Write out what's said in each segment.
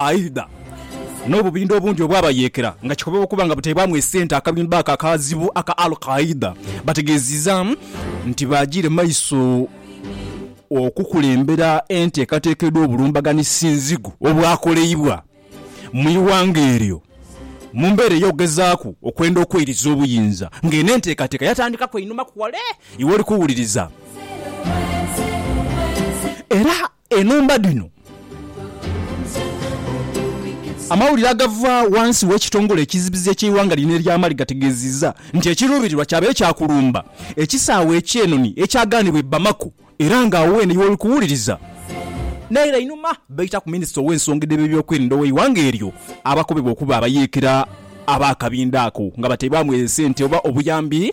Aidha, n'obubindho obundi obwabayeekera nga kikobebwa okuba nga butaibwamu esente akabindho ako akazibu aka Al Qaeda bategeezizza nti baagiire maiso okukulembera enteekateeka edh'obulumbaganhi sinzigu obwakoleibwa mu ighanga eryo mu mbeera ey'okugezaaku okwenda okweiriza obuyinza nga eno enteekateeka yatandikaku einhumaku wale iwoli kuwuliriza era Enhumba dhino Amawulire agava wansi w'ekitongole ekizibizi eky'eighanga lino erya Mali gategeziiza nti ekiruubirirwa kyabaire kya kulumba ekisaawe eky'enoni ekyagaanibwa e Bamako era nga awo weene y'oli kuwuliriza naire einhuma baitaku minisita ow'ensonga edh'ebyokwerinda ow'eighanga eryo abakobebwa okuba abayeekera ab'akabinda ako nga bateebwamu esente oba obuyambi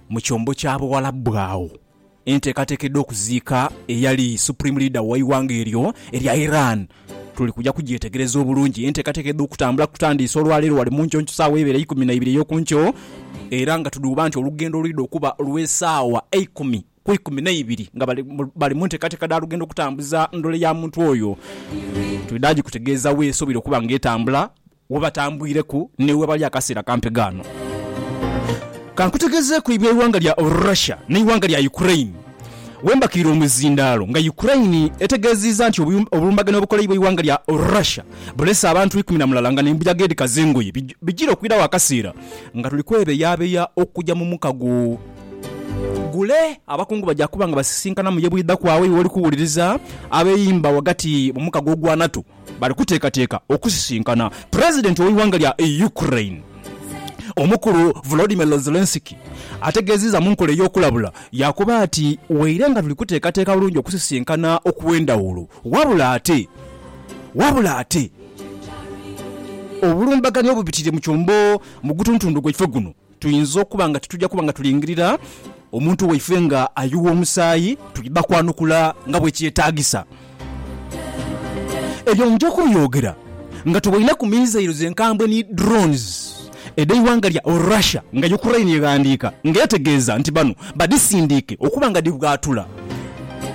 Mu kyombo kya Buwalabu agho enteekateeka edh'okuziika eyali Supreme Leader w'eighanga eryo erya Iran tuli kuja kugyetegereza obulungi. Enteekateeka edh'okutambula kutandiise olwaleero ghali mu nkyonky saawa eibere eikumi na ibiri ey'oku nkyo era nga tudhuuba nti olugendo lwidha okuba lw'esaawa eikumi ku ikumi na ibiri nga bali mu nteekateeka dha lugendo kutambuza ndhole ya muntu oyo. Twidha gikutegeeza weesoboire okuba nga etambula Webatambwireku ni webali akaseera kampi ghano. Kankutegezeeku eby'eighanga lya Russia n'eighanga lya Ukraine wembakiire omuzindaalo nga Ukraine etegeziiza nti obulumbaganhe obukoleibwa eighanga lya Russia bulese abantu ikumi na mulala nga n'embuyaga edhikaza engoye bijira okwirawo akaseera nga tuli kwebeyabeya okuja mu mukago gule. Abakungu baja kuba nga basisinkana mu ye bwidha kwaawo eyo woli kuwuliriza abeyimba ghagati mu mukago ogwa NATO. Bali kuteekateeka okusisinkana Pulezidenti w'eighanga lya Ukraine, Omukulu Volodymyr Zelenskyy ategeezizza mu nkola ey'okulabula yaakoba ati, Waire nga tuli kuteekateeka bulungi okusisinkana okw'endhawulo, wabula ate wabula ate obulumbaganyi obubitiriire mu kyombo mu gutuntundu gwaife guno, Tuinza okuba nga tituja kuba nga tulingirira omuntu waife nga ayugha omusaayi, twidha kwanukula nga bwe kyetaagisa. Ebyo nja kubyogera nga tuboineku missiles enkambwe ni drones edh'eighanga lya Russia nga Ukraine eghandiika nga etegeeza nti bano badhisindiike okuba nga dhibwatula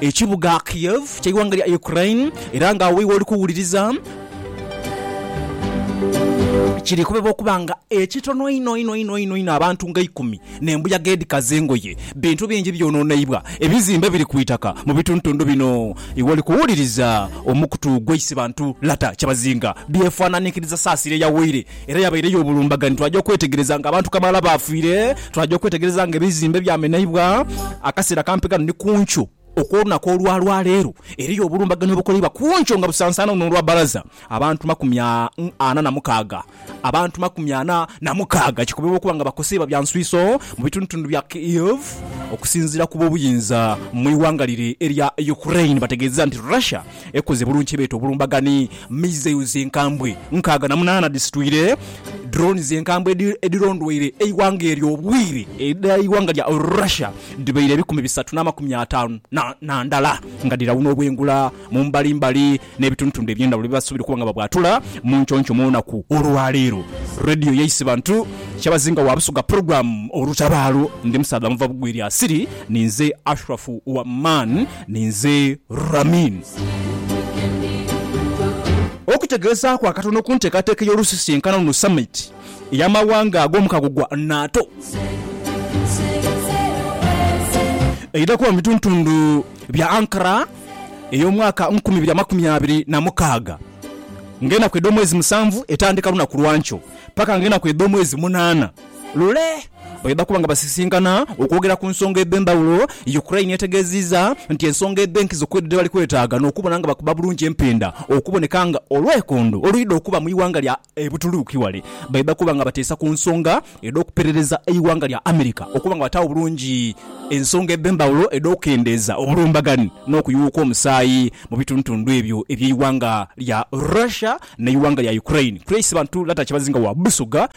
ekibuga Kiev ky'eighanga lya Ukraine era nga awo iwe oli kuwuliriza Kiri kubebwa okuba nga ekitono einho einho einho einho einho abantu nga eikumi n'embuyaga edhikaza engoye, bintu bingi byononeibwa, ebizimbe biri ku itaka mu bitundutundu bino. Iwe oli kuwuliriza omukutu gwa Isibantu Lata Kyabazinga byefananinkiriza saasira eyawaire era yabaire y'obulumbaganyi. Twaja okwetegereza nga abantu kamaala baafiire, twaja okwetegereza nga ebizimbe byameneibwa akaseera kampi ghano ni ku nkyo. Okw'olunaku olwa lwa leero eriyo obulumbaganho obukoleibwa kunkyo nga busansaana luno olwa baraza abantu makumi ana na mukaaga abantu makumi ana na mukaaga kikobebwa okuba nga bakoseibwa bya nswiiso mu bitundutundu bya Kyiv okusinziira ku b'obuyinza mu ighanga lire erya Ukraine bategeezeza nti Russia Ekoze bulungi kye beeta obulumbagani. Missiles enkambwe nkaaga na munaana dhisitwire drones enkambwe edhirondweire eighanga eryo obwire edha ighanga lya Russia dhibaire ebikumi bisatu n'amakumi ataanu na ndala nga dhirawuna obwengula mu mbali mbali n'ebitundutundu eby'endhawulo byebasuubira okuba nga babwatula mu nconco mu lunaku olwaleero. Radio yaise bantu kyabazinga wa Busoga Program Olutabaalo. Ndi musaadha muva bugwire asiri. Ninze Ashrafu Waman. Ninze Ramin. Okutegeezaaku akatono ku nteekateeka ey'olusisinkana luno Summit ey'amawanga ag'omukago gwa NATO eidha kuba mu bituntundu bya Ankara ey'omwaka nkumi ibiri amakumi abiri na mukaaga nga enaku edh'omwezi musanvu etandika lunaku lwankyo paka nga enaku edh'omwezi munaana. Lule bwebakuba nga basisinkana okwogera ku nsonga edh'endhawulo, Ukraine yategeeziiza nti ensonga edh'enkizo kwedho dhebali kwetaaga n'okubona nga bakuba bulungi empinda okuboneka nga olwekondo oluidha okuba mu ighanga lya e Butuluuki wale bwebakuba nga bateesa ku nsonga edh'okuperereza eighanga lya America okuba nga bataagho bulungi ensonga edh'endhawulo edh'okukendeeza obulumbaganhi n'okuyugha kw'omusaayi mu bitundutundhu ebyo eby'eighanga lya Russia n'eighanga lya Ukraine. Chris Bantu Lata Kyebazinga wa Busoga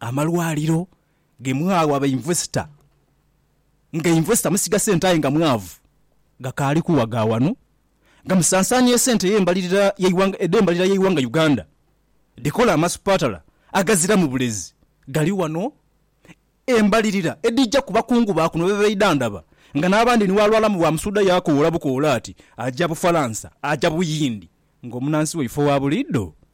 amalwaliro ge mwawa bainvesita nga invesita musiga sente aye nga mwavu gakaali kuwaga wano nga musansaania esente edh'embalirira y'eighanga Uganda dhikola amasupatala agaziramu bulezi gali wano embalirira edhija ku bakungu ba kuno bebeidhandhaba nga n'abandi ni bwalwalamu bwa musuudha yaakoola bukoola ati aja Bufalansa aja Buyindi ng'omunansi waife owa buliidho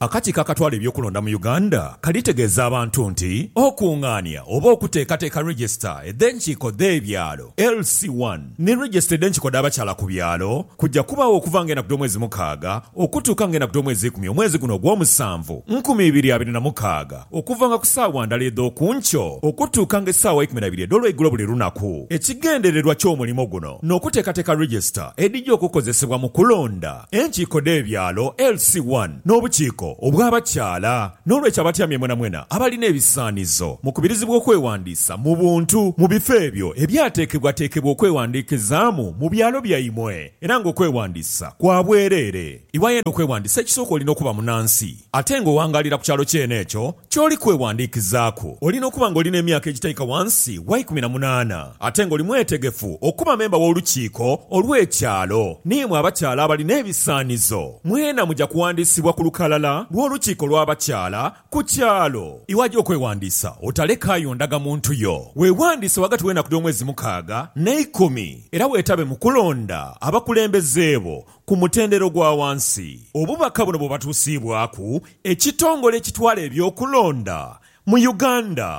Akakiiko akatwala eby'okulonda mu Uganda kalitegeeza abantu nti okungaania oba okuteekateeka Regisita edh'enkiiko dh'ebyalo, LC one, ni Regisita edh'enkiiko dh'abakyala ku byalo kujja kubaagho okuva nga enaku dh'omwezi mukaaga okutuuka nga enaku dh'omwezi ikumi omwezi guno ogw'omusanvu nkumi ibiri abiri na mukaaga okuvanga ku saawa ndala edh'oku nkyo okutuuka nga esaawa ikumi na biri edh'olweigulo buli lunaku. Ekigendererwa ky'omulimo guno n'okuteekateeka Regisita edhija okukozesebwa mu kulonda. Enkiiko dh'ebyalo, LC I, n'obukiiko obw'abakyala. N'olwekyo abatyamye mwenamwena abalina ebisaanizo mukubirizibwa okwewandiisa mu buntu mu bifo ebyo ebyateekebwateekebwa okwewandiikizaamu mu byalo byaimwe era ng'okwewandiisa kwa bwereere. Iwayo eno okwewandiisa ekisooka olina okuba munansi. Ate nga owangaalira ku kyalo kyene ekyo ky'oli kwewandiikizaaku, olina okuba nga oli n'emyaka egitaika wansi wa ikumi na munaana, ate nga oli mwetegefu okuba memba w'Olukiiko olw'Ekyalo. N'imwe abakyala abalina ebisaanizo, mwena muja kuwandiisibwa ku lukalala lw'Olukiiko lw'Abakyala ku kyalo. Iwaja okwewandiisa, otalekaayo ndagamuntu yo. Weewandiise ghagati w'enaku dh'omwezi mukaaga n'eikumi, era weetabe mu kulonda abakulembeze bo Ku mutendera ogwa wansi, obubaka buno bwebatusiibwaku ekitongole ekitwala eby'okulonda mu Uganda.